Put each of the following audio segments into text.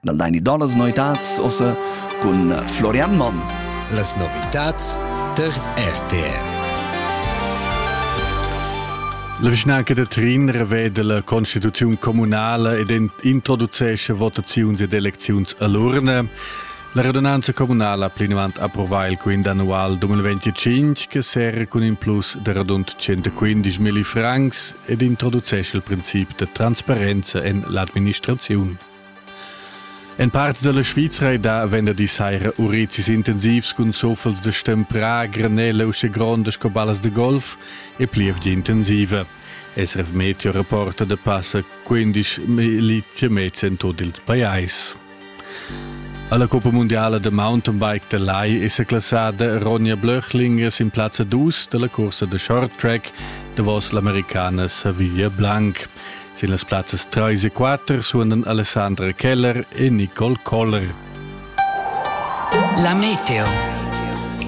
dal dein idolas noitads ossa cun Florian Monn. Las novitats ter RTR. La vischnanca de Trin revede la constituziun comunale ed introducesce votaziuns ed elecziuns all'urne. La radunanza comunale ha plinavant approvato il quint annual 2025 che serra con in plus de radund 115.000 francs ed introducesce il principio de transparenza en l'administrazione. En part dalla Svizra ei da venderdi saira urizis intensivs cun zoffels de stemprà, granella u gronda sco ballas de golf e plievgia intensiva. SRF Meteo reporta da passa 15 militia mezz en tot il pajais. Alla Coppa Mondiale de Mountainbike de Lai è classada Ronja Blöchlinger sin plazza 2 della corsa de short track davos l'americana Savilla Blanc. Sin las plazzas 3 e 4 suonan Alessandra Keller e Nicole Koller. La meteo.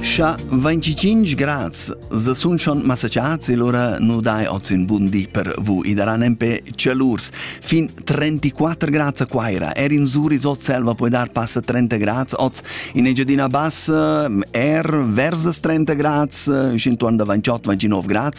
Scha 25 grad se sun schon massacciats e lora nu dai oz in bun di per vu i daran empè celurs. Fin 34 grad a Quaira, er in Zuri Zot selva puoi dar passa 30 grad oz, in Engiadina Bassa er versus 30 grad, 128-29 grad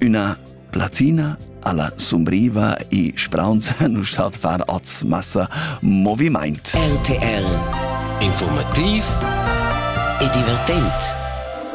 Üna platina alla sumbriva e spraunza nu stat far oz massa movimaint. RTL Informativ e divertent